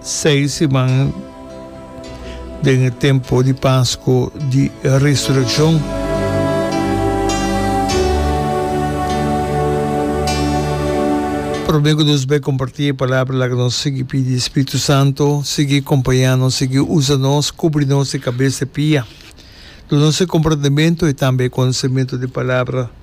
Seis siman den e tempo di Pasko di Resurekshon. Promé ku nos bai kompartí e palabra, laga nos sigui pidi e Spiritu Santu sigui kompañá nos, sigui usa nos, kubri nos di kabes te pia. Dunase komprendementu i tambe e konosementu di e palabra.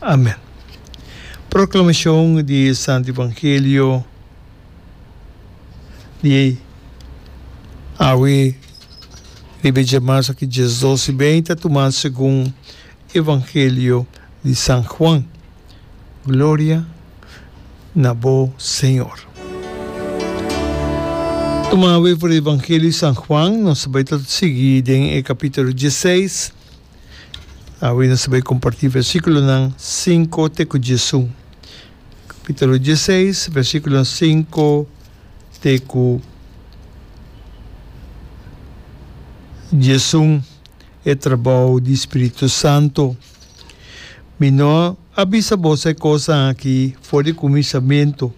Amen. Proclamacion di e Santo Evangelio di awe riba e djamas aki diasdos y bey ta tuma segun e Evangelio di San Juan. Gloria na bo Señor. Tuma awe for e Evangelio di San Juan, nos tabata ta sigui den e capitulo dieseis, Awe nos ta bai kompartí versíkulonan sinku te ku djesu. Kapítulo dieseis, versíkulonan sinku te ku djesun, e trabou di spiritu santu. Mi no a bisa boso e kosnan akí for di kuminsamentu,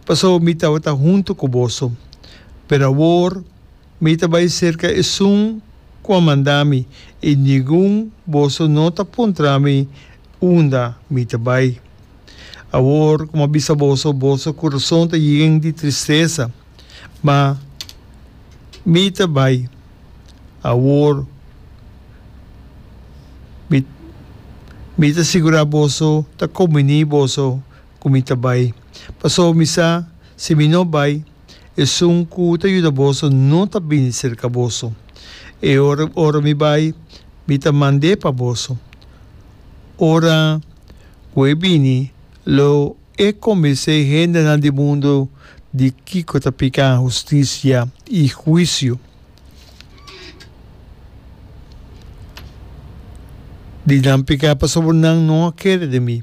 pasobra mi tabata huntu ku boso. Pero awor, Mi ta bai serka esun ku a manda mi, i ningun boso no ta puntra mi unda mi ta bai. Awor ku mi a bisa boso, boso kurason ta yen di tristesa, ma mi ta bai awor. Mi, mi ta sigurá boso, ta komuni'é boso ku mi ta bai, pasobra mi sa si mi no bai, Esun ku ta yuda boso no ta bini serka boso. E ora ora mi bai, mi ta mand'é pa boso. Ora ku e bini, lo e kombins'é hendenan di mundu di kiko ta piká, hustisia i huisiu. Di nan piká pasobra nan no a kere den mi.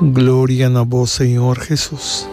Gloria na bo Señor Jesus.